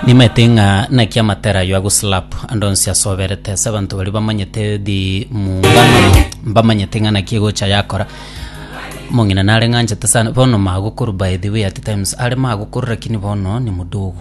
Nimaete ng'a naki amatera ayio agoslap ande onsi ase oberete ase abanto baria bamanyete the mungano mbamanyete ng'a naki egocha yakora omong'ina nare ng'a anchete sana bono magokuru by the way at times are magokuru lakini bono ni mudogo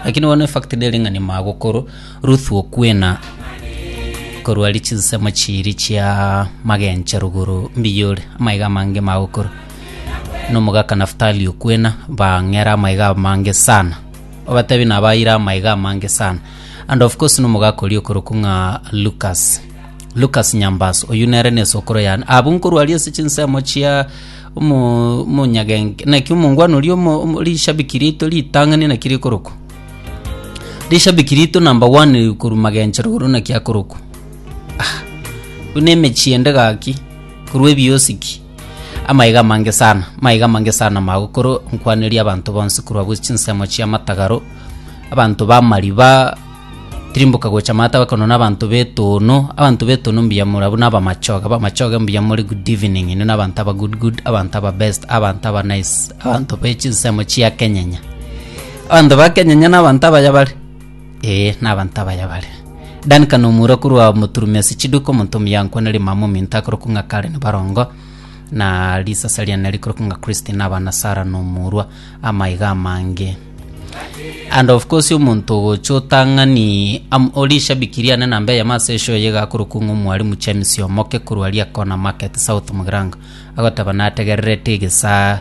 lakini bono efact nere ng'a ni magokuru Ruth okwena korwa ari chinsemo chiiri chia magencho rogoro mbiya ore amaiga amange magokoro. Nomogaka Naftali okwena, bang'era amaiga amange sana. Obatebi nabaayire amaiga amange sana. And of course nomogaka oria okorokwa ng'a Lucas. Lucas Nyambaso, oyio nere na esokoro yane. Abwo nkorwaria ase chinsemo chia omo omonyagenk naki omongwana oria omo omo rishabiki rito ritang'ani naki rikorokwa. Rishabiki rito number one korwa magencho roro naki akorokwa. Buna emechie ende gaki, korwa ebiosiki. Amaiga amange sana, maiga amange sana magokoro nkwaneria abanto bonsi korwa bwe chinsemo chia matagaro, abanto ba mariba, tirimboka gocha mata bakono na abanto betono, abanto betono mbuya more abwo na abamachoge, abamachoge mbuya more good evening, inwe na abanto aba good good, abanto aba best, abanto aba nice, abanto be chinsemo chia kenyenya. Abanto ba kenyenya na abanto abaya bare. Ee, nabanto abaya bare. Duncan omura korwa Moturume ase chiduka, omonto omuyankwa na rimama ominto akorokwa ng'a Karen Barongo, na risasa riane rikorokwa ng'a Christine aba na Sarah na omorwa, amaiga amange. And of course omonto ogocha otang'ani am, ori ishabiki riane namba eyemo ase eshow eye iga akorokwa ng'a omwarimu James Omoke korwa Liakona Market South Mugirango, agoteba nategererete egesaa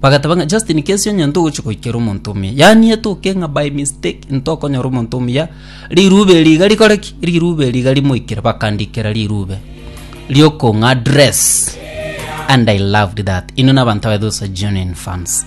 Bagateba ng'a Justin kesi onye ntogochia goikera omonto omuya. Yaani etoke ng'a by mistake ntokonyora omonto omuya rirube eri iga rikore ki? Rirube eri iga rimoikere bakandikera rirube riokong'a dress and I loved that. Inwe nabanto abaito sa genuine fans.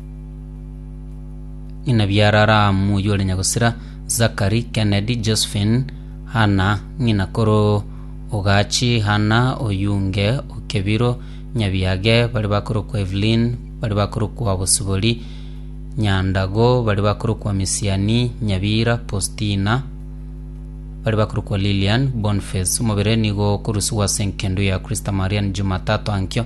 Ng'ina biara Ramu oyio ore nyagosira, Zakari, Kennedy, Josephine, Hanna, ng'ina koro ogachi Hanna oyunge o Kebiro, nyabiage baria bakorokwa Evelyn, baria bakorokwa Bosibori, Nyandago, baria bakorokwa Misiani, Nyabira, Postina, baria bakorokwa Lilian, Boniface. Omobere nigo okorusigwa ase enkendo ya Kristo Marian Jumatato ankio,